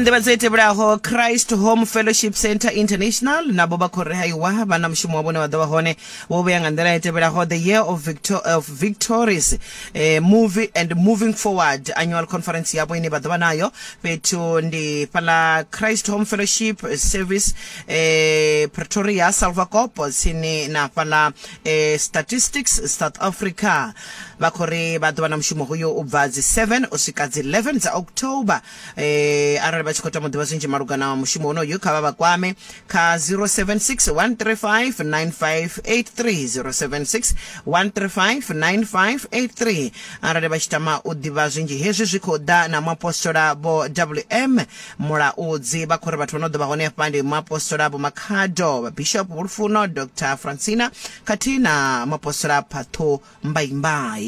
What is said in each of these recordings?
nḓivhadzo i tevhelaho christ home fellowship center international navho vha khou rehaiwa vha na mushumo wavho une wa ḓo vha hone wo vhea nga nḓila i tevhelaho the year of, victor, of victories eh, movie and moving forward annual conference yavho ine vha ḓo vha nayo fhethu ndi fhala christ home fellowship service eh, pretoria salvacopo tsini na fhala eh, statistics south africa vha khou ri vha ḓo vha na mushumo hoyo u bva dzi 7 u swika dzi 11 dza october eh, arali vha tshi khou tama u ḓivha zwinzhi malugana wa mushumo wonoyu kha vha vha kwame kha 076 135 9583 076 135 9583 arali vha tshi tama u ḓivha zwinzhi hezwi zwi khou ḓa na muapostola vho wm mulaudzi vha khou ri vhathu vha no ḓo vha hone hafha ndi muapostola vho makhado vhabishop vhulufuno dr francina khathihi na muapostola phatho mbaimbay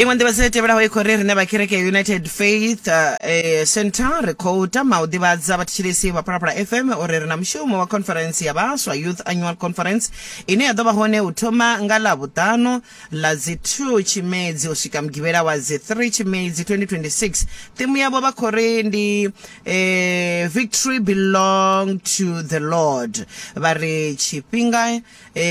iṅwe nḓivhadzo i tevhelaho i khou ri rine vhakereke ya united faith uh, eh, center ri khou tama u ḓivhadza vhathetshelesi vha phalaphala fm uri ri na mushumo wa conference ya vhaswa youth annual conference ine ya ḓo vha hone u thoma nga ḽa vhuṱanu ḽa dzi 2 Tshimedzi u swika Mugivhela wa dzi 3 Tshimedzi 2026. Thimu yavho vha khou ri ndi Victory Belong to the Lord. Vha ri tshifhinga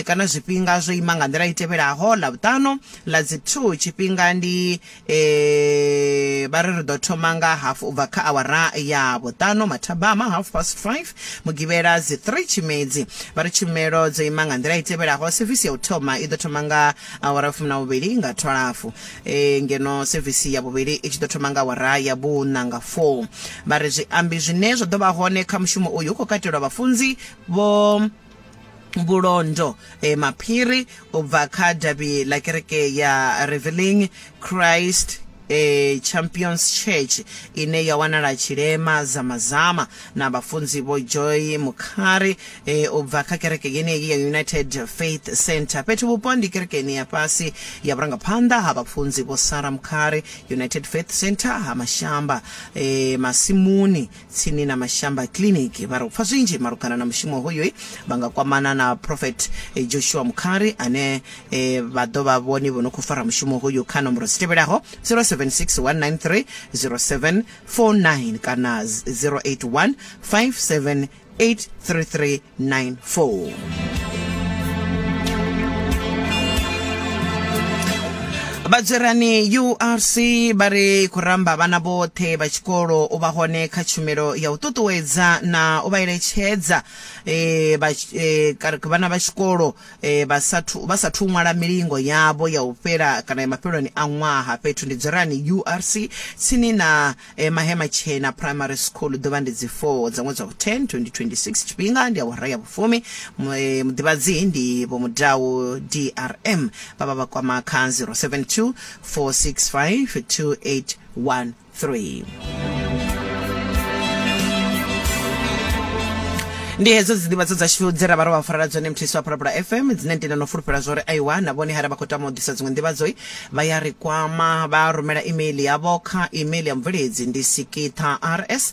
kana zwifhinga zwo ima nga nḓila i tevhelaho, Ḽavhuṱanu ḽa dzi 2 tshifhinga ndi. e vha ri ri ḓo thoma nga half u bva kha awara ya vhuṱanu mathabama half past 5 mugivhela dzi 3 tshimedzi vha ri tshumelo dzo ima nga nḓila i tevhelaho sevisi ya u thoma i ḓo thoma nga awara fumi na vhuvhili nga thwalafu e, ngeno sevisi ya vhuvhili i tshi ḓo thoma nga awara ya vhuṋa nga 4 vha ri zwiambi zwine zwa ḓo vha hone kha mushumo uyu hu khou katelwa vhafunzi vho vhulondo e maphiri u bva kha davhi ḽa kereke ya reveling christ e champions church ine ya wanala tshilema zamazama na vhafunzi vho joy mukhari e u bva kha kereke yeneyi ya united faith center fhethu vhupo ndi kerekeni ya fhasi ya vhurangaphanḓa ha vhafunzi vho sara mukhari united faith center ha mashamba e masimuni tsini na Mashamba Clinic vha ri u pfa zwinzhi malugana na mushumo hoyu vha nga kwamana na Prophet Joshua Mukhari ane e, vha ḓo vha vhone vho no khou fara mushumo hoyu kha nomboro dzi tevhelaho 0761930749 kana 08157833 994 vhadzwerani urc vha ri khou ramba vhana vhoṱhe vha tshikolo u vha hone kha tshumelo ya u ṱuṱuwedza na u vha eletshedza e, vha, e, vhana vha tshikolo e, vha sathu vha sathu ṅwala milingo yavho ya u fhela kana ya mafheloni a ṅwaha fhethu ndi dzwerani urc tsini na E, Mahema Tshena Primary School, ḓuvha ndi dzi 4 dza ṅwedzi wa vhu 10 2026, tshifhinga ndi awara ya vhufumi, Mu- eh, muḓivhadzi ndi Vho Mudau DRM, vha vha vha kwama kha 072 465 2813. ndi hedzo dzi ndivhadzo dzashu dze ra vha ro vha farela dzone mthisi wa phalaphala fm dzine ndi na no fulufhela zwa uri aiwa na vhone hara vha khou tama u ḓisa dziṅwe ndivhadzoi Vha ya ri kwama, vha rumela imeiḽi yavho kha imeiḽi ya mubveledzi ndi sikiṱhaars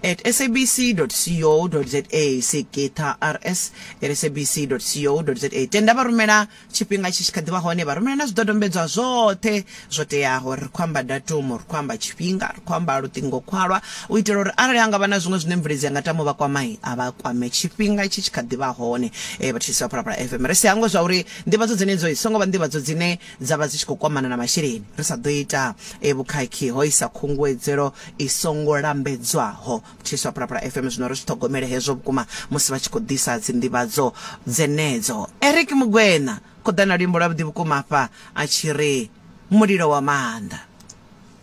at sabc.co.za, sikiṱhaars at sabc.co.za. Tenda vha rumela tshifhinga tshi tshi kha ḓi vha hone, vha rumela na zwidodombedzwa zwoṱhe zwo teaho. Ri khou amba datumu, ri khou amba tshifhinga, ri khou amba luṱingokhwalwa u itela uri arali ha nga vha na zwiṅwe zwine mubveledzi a nga tama u vha kwama, a vha kwame tshifhinga tshi tshi kha ḓi vha hone. Vhathetshelesi vha Phalaphala FM, ri si hangwe zwa uri Nḓivhadzo dzenedzo i songo vha nḓivhadzo dzine dza vha dzi tshi khou kwamana na masheleni. Ri sa ḓo ita vhukhakhi ho isa khunguwedzelo i songo lambedzwaho. Mthisi wa Phalaphala FM zwino ri zwi ṱhogomele hezwo vhukuma musi vha tshi khou ḓisa dzinḓivhadzo dzenedzo. Eric Mokoena, Khuḓana luimbo lwavhuḓi vhukuma afha a tshi ri, Mulilo wa maanḓa.